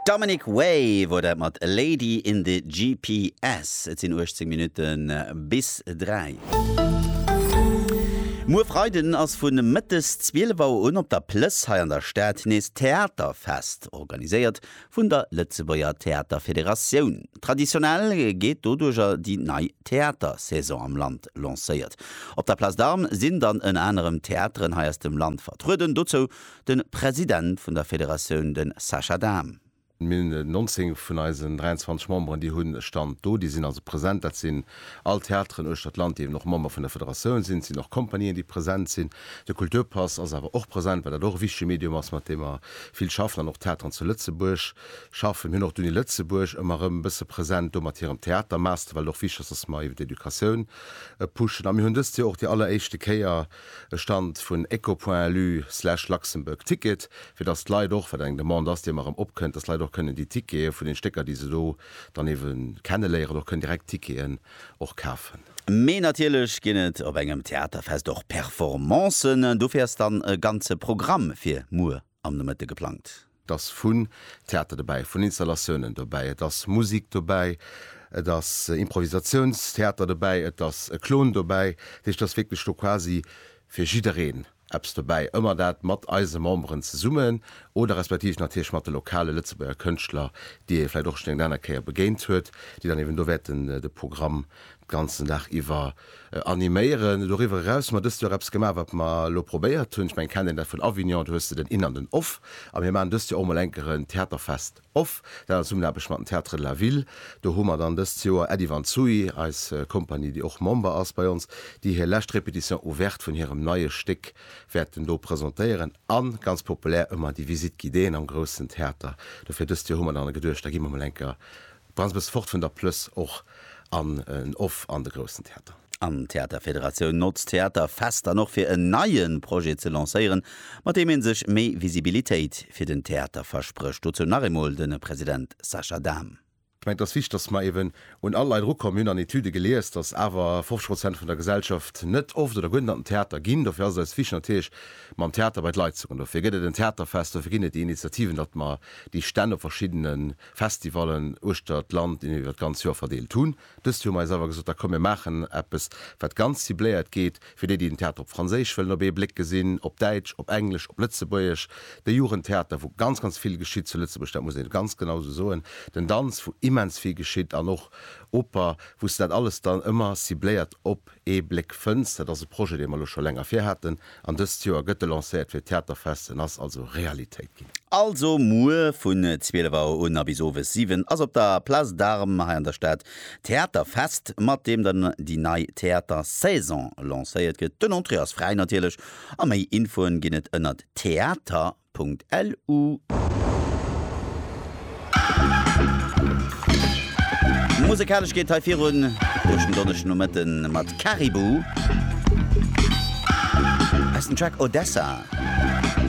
Dominic Wave huet dat mat Lady in the GPS. Et sinn 18 Minutte bis 3. Muer Freiden ass vu mëttes 12 Auer un op der Plëss hei an der Stad nees d'Theaterfest, organiséiert vun der Lëtzebuerger Theaterfederatioun. Traditionell geet doduerger déi nei Theatersaison am Land lancéiert. Op der Place d'Armes sinn dann ënner anerem Theateren hei aus dem Land vertrueden, dozou De President vun der Federatioun, de Sascha Dahm. Mir hunn 19 vun eisen 23 Memberen, déi hunn e Stand do, déi sinn also present. Dat sinn all Theateren uechter d'Land, déi eben och Member vun der Federatioun sinn. Et sinn och Companien, déi present sinn. De Kulturpass ass awer och present, well dat och e wichtege Medium ass, mat deem mer vill schaffen an och d'Theateren zu Lëtzebuerg schaffen. Mir hunn och d'Uni Lëtzebuerg ëmmer erëm e bësse present do mat hirem Theatermaster, well et och wichteg ass, dass mer iwwer d'Educatioun pushen. A mir hunn dëst Joer och déi alleréischte Kéier, e Stand vun Ecopointu slash Luxembourg Ticket, fir datt d'Leit och, wat eng Demande ass, déi ëmmer erëm opkënnt, datt d'Leit och kënnen déi Tickete vun den Stécker, déi se do dann eebe kenneléieren, och kënnen direkt d'Ticketen och kafen. Mee natierlech ginn et op engem Theaterfest och Performancen. Dofir ass dann e ganze Programm fir muer am Nomëtte geplangt. Et ass vun Theater dobäi, vun Installatiounen dobäi, et ass Musik dobäi, et ass Improvisatiounstheater dobäi, et ass e Klon dobäi. Dat heescht, et ass wierklech do quasi fir jiddereen eppes dobäi. Ëmmer dat mat eise Memberen zesummen oder respektiv natierlech mat de lokale Lëtzebuerger Kënschtler, déi ee vläicht och schonn eng aner Kéier begéint huet, déi dann eeben do wäerten de Programm d'ganzen Dag iwwer animéieren. Doriwwer eraus hu mer dëst Joer eppes gemaach, wat mer elo probéiert hunn, ech mengen, kennt een dat vun Avignon, do hues de den In an den Off. A mir maachen dëst Joer och mol eng Kéier en Theaterfest Off, dat an Zesummenaarbecht mat den Théâtres de la Ville. Do hu mer dann dëst Joer Äddi Van Zooy, eis Kompanie, déi och Member ass bei ons, déi hir lescht Répétition ouverte vun hirem neie Stéck wäerten do presentéieren. A ganz populär ëmmer déi Visite guidéeën am groussen Theater. Dofir dëst Joer hu mer dann geduecht, da gi mer mol eng Kéier Brauns bes fort vun der Plëss och an en off an de groussen Theater. An d'Theaterfederatioun notzt d'Theaterfest dann och fir en neie Projet ze lancéieren, mat deem ee sech méi Visibilitéit fir den Theater versprécht. Dozou nach eemol de President Sascha Dahm. Ech mengen, et ass wichteg, datt mer eeben un all Leit erukommen. Mir hunn an Etüde gelies, datt awer 50 Prozent vun der Gesellschaft net oft oder guer net an den Theater ginn. Dofir ass et eis wichteg natierlech, mam Theater bei d'Leit ze kommen. Dofir gëtt et en Theaterfest, dofir ginn et déi Initiativen, datt mer déi Stänn op verschiddene Festivallen uechter d'Land iwwer d'ganz Joer verdeelt hunn. Dëst Joer hu mer eis awer gesot, da komm mir maachen eppes wat ganz cibléiert geet fir déi, déi den Theater op Franséisch wëllen op ee Bléck gesinn, op Däitsch, op Englesch, op Lëtzebuergesch, de Jugendtheater wou ganz, ganz vill geschitt zu Lëtzebuerg, dat muss ee ganz genau esou soen, den Danz wou immens vill geschitt an och Oper, wou s de dat alles dann ëmmer cibléiert op. Ee Bléck Fënns, dat ass e Projet, dee mer elo scho länger vir haten, an dëst Joer gëtt e lancéiert fir d'Theaterfest. En ass also Realitéit ginn. Also muer vun 12 Auer un a bis owes 7 ass op der Place d'Armes hei an der Stad d'Theaterfest, mat deem dann déi nei Theatersaison lancéiert gëtt. Den Entrée ass fräi natierlech a méi Infoen ginn et ënnert theater. www.ccc.lu. Musekalesch geet hei virun duerch den Donneschdegnomëtten mat Caribou aus dem Track Odessa.